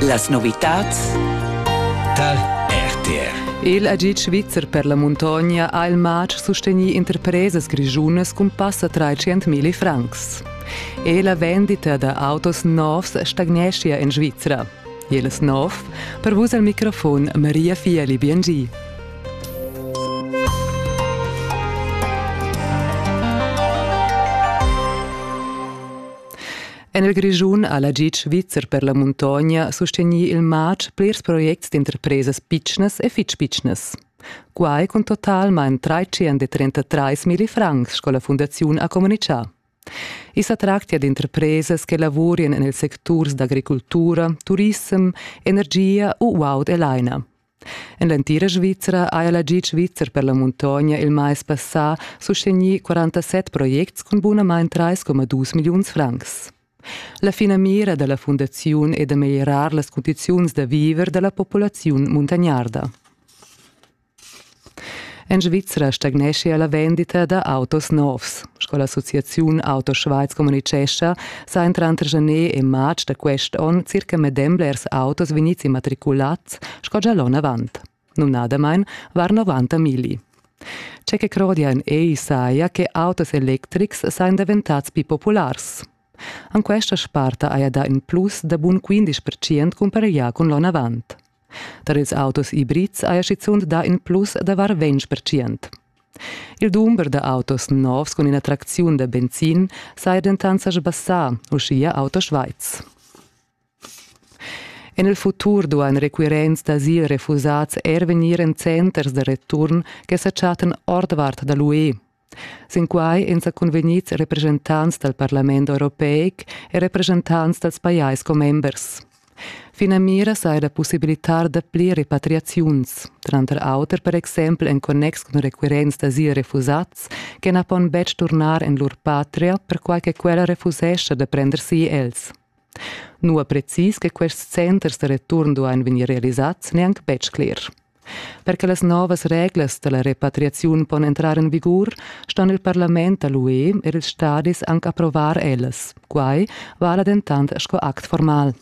Las novitads tar RTR. Il agid svizzer per la muntogna ha il matg sustegnì interpresas grischunas cun passa 300.000 francs. E la vendita da autos novs stagneschia en Svizra. Jeles nov, per vus al microfon Maria Fieli Biengi. En il Grischun ha la GIG svizzer per la muntogna sustegnì il matg plirs projects d'interpresas pitschnas e fitg pitschnas. Quai cun totalmain 333 francs, sco la fundaziun ha communitgà. I sa tractia d'interpresas che lavurien en ils secturs d'agricultura, turissem, energia u guaud e laina. En l'entira Svizra haja la GIG svizzer per la muntogna il mais passà sustegnì 47 projects cun bunamain 3,2 milliuns francs. La finamira da la fundaziun è da meglierar las cundiziuns da viver da la populaziun muntagnarda. En Svizra stagneschia la vendita da autos novs. Sco l'associaziun Auto Schweiz communitgescha, sajan tranter gener e marz da quest onn circa medem blers autos vegnids immatriculads sco gia l'onn avant. Numnadamain var 90 migli. Tge che crodian ei saja che autos electrics sajan daventads più populars. An questa sparta haja dà in plus da bun 15% cumpareglià cun l'onn avant. Tar ils autos ibrids haja schizunt dà in plus da var ventg percent. Il dumber da autos novs cun ina tracziun da benzin saja dentant sa sbassà, uschia Auto Schweiz. En il futur duain requirents d'asil refusads er vegnir en centers da return che sa chattan ordvart da l'UE. Sin quai ein secunvegnids representants dal parlament europeic e representants dals pajais commembers. Finamira saja da pussibilitar dapli repatriaziuns, tranter auter per exempel en connex cun requirents d'asil refusats che na pon betg turnar en lur patria perquai che quella refusescha da prender si els. Nua precis che quests centers da return duain vegnir realisads n'è anc betg cler. Per che las novas reglas dalla repatriaziun pon entrar en vigur, ston il parlament da l'UE e ils stadis anc approvar ellas. Quai vala dentant sco act formal.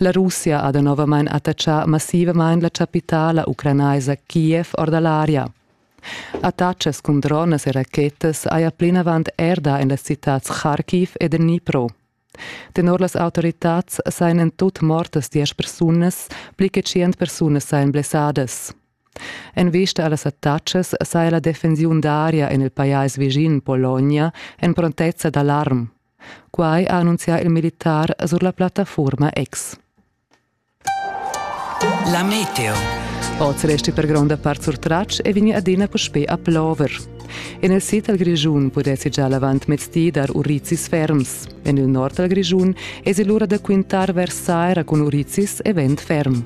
La Russia ha danovamain attachà massivamain la chapitala ucranaisa Kiev or da l'aria. Attachas cun dronas e rachetas haja plinavant erda en las citads Kharkiv e Dnipro. Tenor las autoritads sajan en tut mortas diesch persunas, pli che tschient persunas sajan blessadas. En vista a las attacas saja la defensiun d'aria en il pajais vischin Pologna en prontezza d'alarm. Quai ha annunzià il militar sur la plattafurma X. La meteo. Oz resti per gronda part surtratg e vegni adina puspè a plover. En il sid dal Grischun pudessi già l'avantmezdi dar urizis ferms. En il nord dal Grischun esi l'ura da quintar vers saira cun urizis e vent ferm.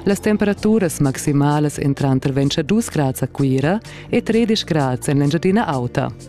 Las temperaturas maximalas entran tranter 22 grads a Cuira e 13 grads en l'Engiadina Auta.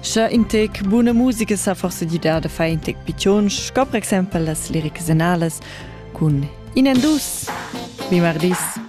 Sche in tec buna musica sa forse gidar da fare in tec piccion, sco per exempel las lirics anales cun in en dus. Vi mardis!